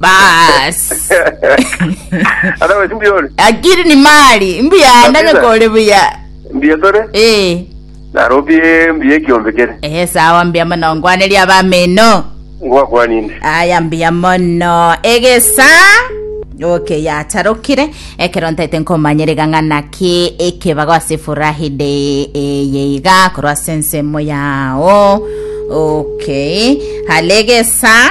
bas Ata wesi mbuya ore. akiri ni mali mbuya ndanye Kabisa. kore buya Mbuya tore. eh Narobie mbuya ekiombe kere. ehe sawa mbuya mono ngwaneria abamino Ngwakwaninde. aya mbuya mono egesa okay yatarokire ekero ntaete nkomanyere gang'ana ki ekebago ase furahide eye iga korwa ase ensemo yao okay halegesa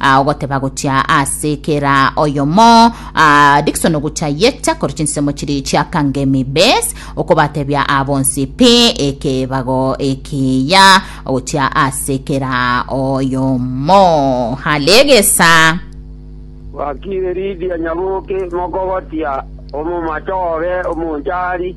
Ah, ogoteba gochia ase kera oyomo ah, Dickson ogocha yecha kore chinsemo chiri chia kangemi base okobatebia abonsi pi ekebago ekiya ogochia ase kera oyomo halegesa Wakire Lidia Nyaboke mokogotia omomacha obe omonchari.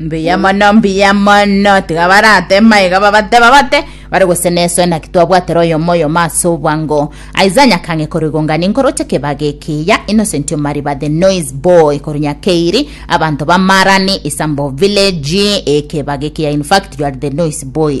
Mbuya mono, mbuya mono. Tiga baratema iga babateba bate, bare gose nesoe naki twabwatera oyomo oyomo ase obwango. Isaiah Nyakange korwa Igongani nkoroche kebaga ekiya, Innocent Omariba the noise boy korwa Nyakeiri, abanto ba Marani, Isambo village, eh, kebaga ekiya in fact you are the noise boy.